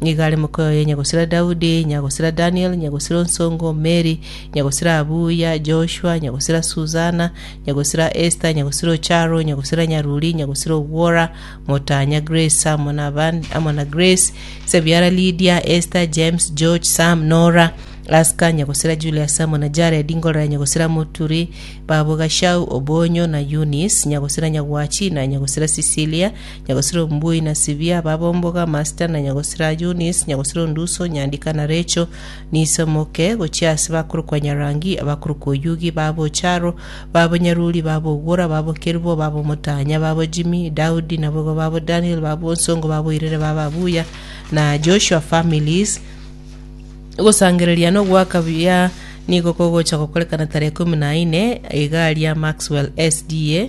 Nigo are mokoyo ye nyagosira Daudi, nyagosira Daniel, nyagosira onsongo, Mary, nyagosira Abuya, Joshua, nyagosira Susana, nyagosira Esther, nyagosira Ocharo, nyagosira Nyaruri, nyagosira Ogwora, Motanya, Grace, amo na abande, amo na Grace, Sebiara Lydia, Esther, James, George, Sam, Nora, Aska, nyagosira Julius, amo na Jared, Ngorora, nyagosira Muturi, Babo Gashau, Obonyo, na Eunice, nyagosira Nyagwachi, na nyagosira Cecilia, Nyagosira Ombui na Sibia, ababomboga, Amasta na Nyagosira Yunis, Nyagosira Onduso, Nyandika na Recho, niso moke, gochia ase bakorokwa Nyarangi, abakorokwa Oyugi, baba Ocharo, baba Nyaruri, baba Ogwora, baba Okerubo, baba Omotanya, baba Jimmy, Daudi, naboigo baba Daniel, baba Onsongo, baba Oirere, baba Abuya, na Joshua families, Ogosangereria na ogoaka buya nigo kogocha gokorekana tarehe ikomi na ine, Iga ria Maxwell SDA.